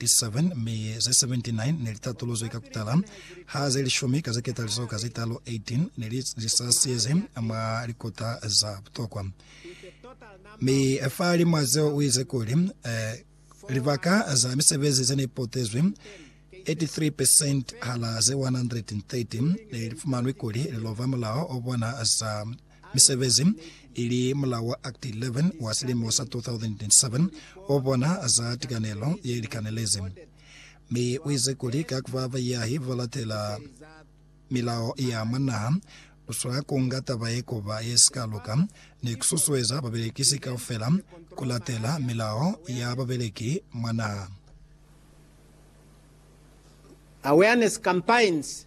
37 mi ze 79 ne li tatuluzwi ka kutala, ha ze lishumi ka ze ketalizo ka ze talu, 18, ne li sasiyezi mwa likota za butokwa. Mi fa limwa zeo u ize kuli, eh, libaka za misebezi ze ne potezwi, 83% hala ze 130 ne li fumanwi kuli li lova mulao o bona za Misebezi, ili mulao wa Act 11 wa silimo sa 2007, ubona za tikanelo ye likanelezi, mi uize kuli ka kuba bayahi ba latela milao ya mwa naha, uswanela kunga taba ye kuba ye sika luka, ni kususueza babelekisi kaufela kulatela milao ya babeleki mwa naha. Awareness campaigns.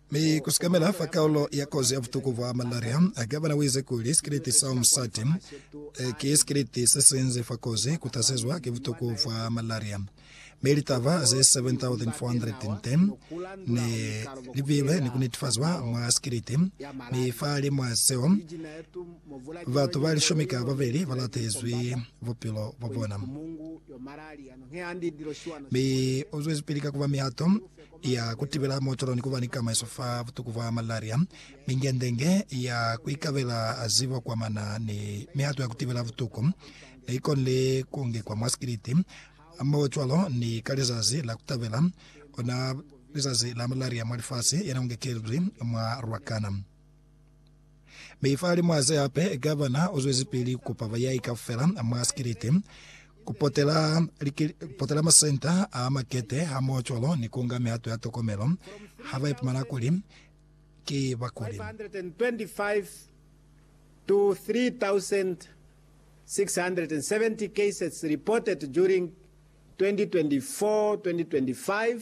Mi kusikamela fa kaulo ya kozi ya butuku bwa malaria, Gavana uize kuli sikiliti sa Umsati ki sikiliti sesinzi fa kozi kutasezwa ki butuku bwa malaria. Mi litaba ze 7,410 ne libilwe ni kunetifazwa mwa sikiliti, mi fahalimw'a seo, batu ba lishumi ka babeli balatezwi bupilo bwabona. Mi uzwezipili ka kuba mihato ya ku tibela mootolo ni ku ba ni kamaiso fa butuku bwa malaria, mingendenge ya ku ikabela zibo kwa mana ni mihato ya ku tibela butuku ne i konile ku ngekwa mwa sikiliti hamohocwalo ni ka lizazi la ku tabela ona lizazi la malaria mwa lifasi, yena u ngekelizwi mwa Ruacana. Mi fa limuhaze hape, gavana u zwezipili ku pa bayai kaufela mwa sikiliti, ku potela, ku potela masenta a makete hamoho cwalo ni ku nga mihato ya tokomelo ha ba ipumana kuli ki bakuli. 525-3,670 cases reported during 2024-2025.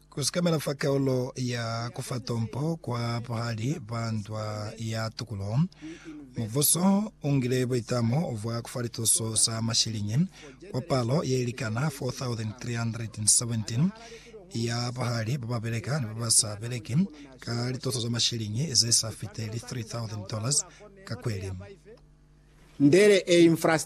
Ku sikamela fa kaulo ya ku fa tompo kwa buhali bwa ndwa ya tukulo, mubuso u ngile buitamo bwa ku fa lituso za mashiliñi kwa palo ye likana 4,317 ya buhali ba ba beleka ni ba ba sa beleki ka lituso za mashiliñi ze sa fiteli $3,000 ka kweli. Ndele e infrastructure.